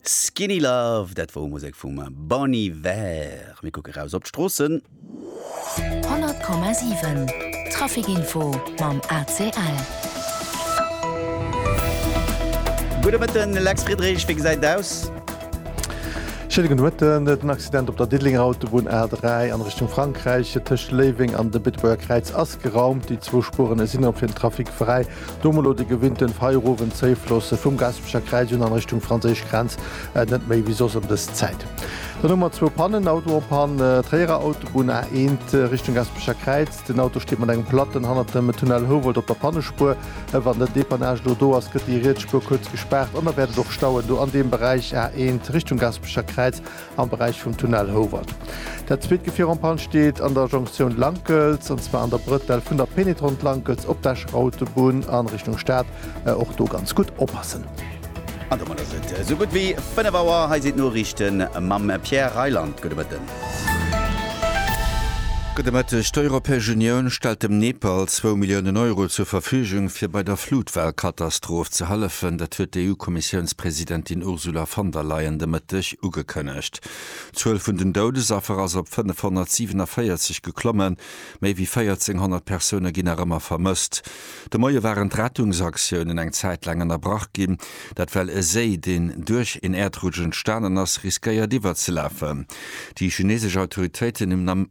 Skinny Love, dat wor Musek vum Bon Iver. Mir kucke raus op d'Stroossen. 100,7 Traficinfo mam ACL. Gudde Mëtten, Lex Friedrich, wéi gesäit et aus? Schéine gudde Mëtten. Den Accident op der Diddelenger Autobunn A3 an Richtung Frankräich tëscht Léiweng an de Beetebuerger Kräiz ass geraumt. Déi zwou Spuren sinn erop fir den Trafic fräi. Do mol lo de gewinnten feierowen Zéif loosse vum Gaspecher Kräiz un an Richtung franséisch Grenz, net méi wéi soss ëm dës Zäit. Dann hu mer zwou Pannen, Auto en panne, Tréierer Autobunn A 1 Richtung Gaspecher Kräiz, den Auto steet mat engem Platten hannert dem Tunnel Houwald op der Pannespuer. Wann den Depannage elo do ass, gëtt déi riets Spuer kuerz gespaart an da wäert et och stauen do an deem Beräich A 1 Richtung Gaspecher Kräiz. am Beräich vum Tunnel Houwald. Dat zweet Gefier en panne steet an der Jonktioun Lankels, an zwar an der Brëtell vun der Pénétrante Lankels op d'Escher Autobunn a Richtung Stad. Och do ganz gutt oppassen. An domat ass et esou gutt wéi 5 Auer. Hei sinn d'Noriichte mam Pierre Reyland. Gudde Mëtten. Gudde Mëtteg. D'Europäesch Unioun stellt dem Nepal zwou Milliounen Euro zur Verfügung, fir bei der Flutwellkatastroph ze hëllefen. Dat huet d'EU-Kommissiounspresidentin Ursula von der Leyen de Mëtteg Ugekënnegt. D'Zuel vun den Doudesaffer ass op 547 geklommen. Méi wéi 1400 Persoune ginn nach ëmmer vermësst. De Moie waren d'Rettungsaktiounen eng Zäit laang ënnerbrach ginn. Dat well e Séi, deen duerch een Äerdrutsch entstanen ass, riskéiert iwwerzelafen. Déi chinesesch Autoritéiten hunn am.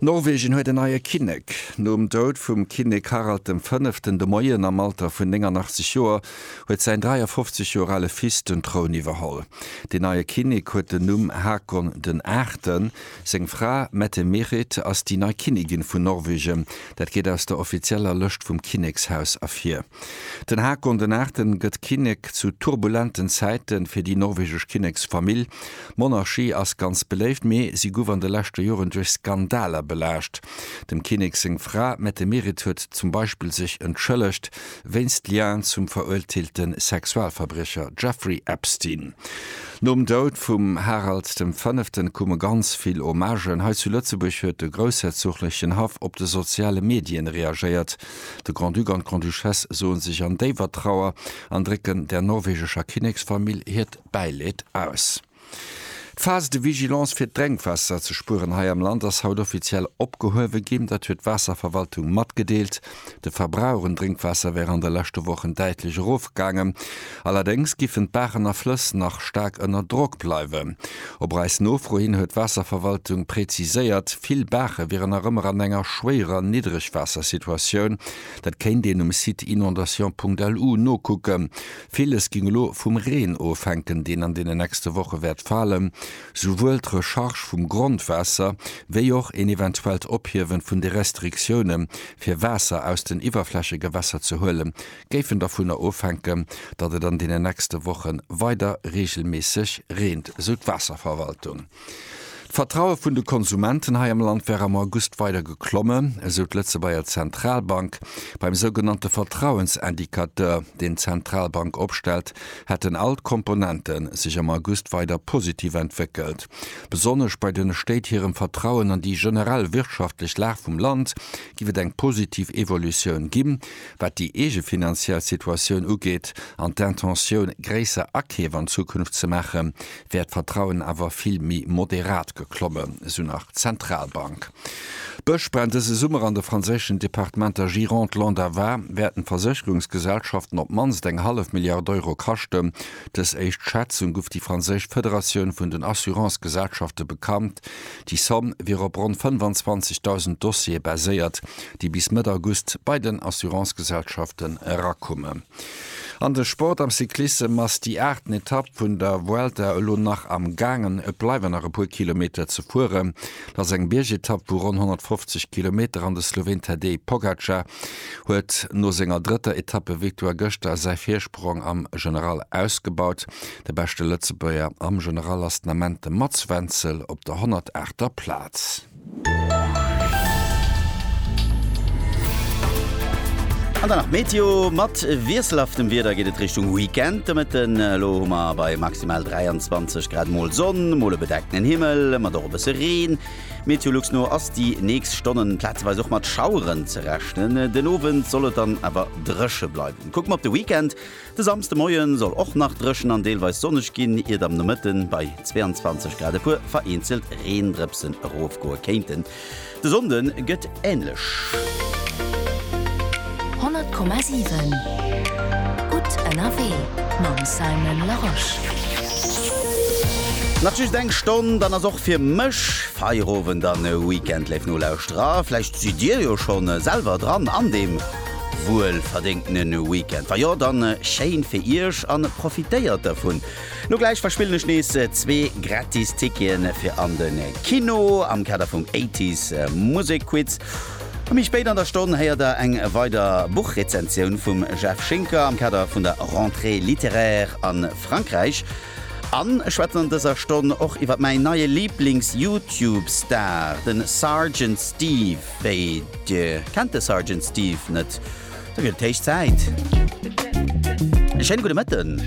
Norwegen huet en neie Kinnek. Nom Doud vum Kinnek Harald dem Fënneften de Moien am Alter vun 89 Joer huet säin 53 Joer ale Fils den Troun iwwerholl. Deen neie Kinnek huet den Numm Haakon den Aachten. Seng Fra Mette-Merit ass déi nei Kinnigin vun Norwegen. Dat geet aus der offizieller Lëscht vum Kinnekshaus ervir. Den Haakon den Aachten gëtt Kinnek zu turbulenten Zäiten fir déi norwegesch Kinneksfamill. D'Monarchie ass ganz beléift, mee si guff an de leschte Joren duerch Skandaler belaascht. Dem Kinnek seng Fra Mette Merit huet zum Beispill sech entschëllegt wéinst Lien zum veruerteelte Sexualverbriecher Jeffrey Epstein. Nom Doud vum Harald dem Fënneften kumme ganz vill Hommagen. Hei zu Lëtzebuerg huet de groussherzoglechen Haff op de soziale Medien reagéiert. De Grand-Duc an d'Grande-Duchesse soe sech an déiwer Trauer an drécken der norwegescher Kinneksfamill hiert Bäileed aus. D'Phase de vigilance fir d'Drénkwaasser ze spueren hei am Land ass haut offiziell opgehuewe ginn. Dat huet d'Waasserverwaltung matgedeelt. De Verbrauch un Drénkwaasser wär an de leschte Wochen däitlech erofgaangen. Allerdéngs giffen d'Baachen a Flëss nach staark ënner Drock bleiwen. Op eis Nofro hin huet d'Waasserverwaltung präziséiert, vill Baache wieren nach ëmmer an enger schwéierer Niddregwaassersituatioun. Dat kéint een um Site inondations.lu nokucken. Villes géing elo vum Reen ofhänken, deen an deenen nächste Woche wäert falen. Souwuel d'Recharge vum Grondwaasser, wéi och een eventuellt Ophiewe vun de Restriktioune fir Waasser aus den Iwwerflächegewässer ze huele géifen dovunner ofhänken, datt et an deenen nächste Woche weider reegelméisseg reent, esou d'Waasserverwaltung. D'Vertraue vun de Konsumenten hei am Land war am August weider geklommen, esou d'Lëtzebuerger Zentralbank. Beim sougenannte Vertrauensindicateur, deen d'Zentralbank opstellt, hätten all d'Komponente sech am August weider positiv entwéckelt. Besonnesch bei den Stéit hirem Vertrauen an déi generell wirtschaftlech Lag vum Land géif et eng positiv Evolutioun ginn, wat déi eege finanziell Situatioun ugeet an d'Intentioun, gréisser Akeef an Zukunft ze maachen, wär d'Vertrauen awer vill méi moderat geklommen, esou nach d'Zentralbank. D'Bëschbränn dëse Summer an de franséischen Departementer Gironde, Landes a Var wäerten d'Versécherungsgesellschaften op d'mannst eng hallef Milliard Euro kaschten. Dës éischt Schätzung gouf déi franséisch Federatioun vun den Assurance-Gesellschafte bekannt. Déi Somm wier op ronn 25.000 Dossiere baséiert, déi bis Mëtt August bei den Assurance-Gesellschaften erakommen. An de Sport am Cyclissem ass déi aachten Etapp vun der Vuelta elo nach am gaangen. Et bleiwen nach e puer Kilometer ze fueren. Et ass eng Biergetapp vu ronn 150 Kilometer an de Sloween Tadej Pogacar huet no senger drëtter Etappevictoire gëschter säi Virsprong am General ausgebaut. De beschte Lëtzebuerger am General ass den Ament de Mats Wenzel op der 108. Plaz. An dann nach d'Meteo, Mat wiesselhaftem Wieder geet et Richtung Weekend. De Mëtten elo hu mer bei maximal 23 Grad mol Sonn, mol e bedeckten Himmel mat och e bësse Reen. Meteolux no ass déi nächst Stonnen plazeweis och mat Schaueren ze rechnen. Den Owend soll et dann awer dréche bleiwen. Kucke mer op de Weekend, De Samsde Moie soll och nach dréchen an deelweis sonneg ginn, iert am Nomëtte bei 22 Grad e puer vereenzelt Reendrëpsen erofgoe kéinten. De Sonnde gëtt änlech. 100,7 gutt ënnerwee mam Simon Larosche. Nach just eng Stonn, dann ass och fir mech Feierowend an Weekend. Léif Nolauschterer, vläicht sidd dir jo schonn selwer dran an deem. Wuel verdéngtene Weekend? Wa jo, dann schéin fir Iech an profitéiert dervun. Lo gläich verspillen ech nees zwee gratis Ticketen fir an den Kino am Kader vum Eighties Musekquiz. A méi spéit an der Stonn héiert der eng weider Buchrezensioun vum Jeff Schinker am Kader vun der Rentrée littéraire a Frankräich. An ech schwätzen an dëser Stonn och iwwer mäin neie Lieblings-Youtube-Star, de Sergeant Steve. Wéi, Dir kennt de Sergeant Steve net? Da gëtt et héich Zäit. E schéine gudde Mëtten.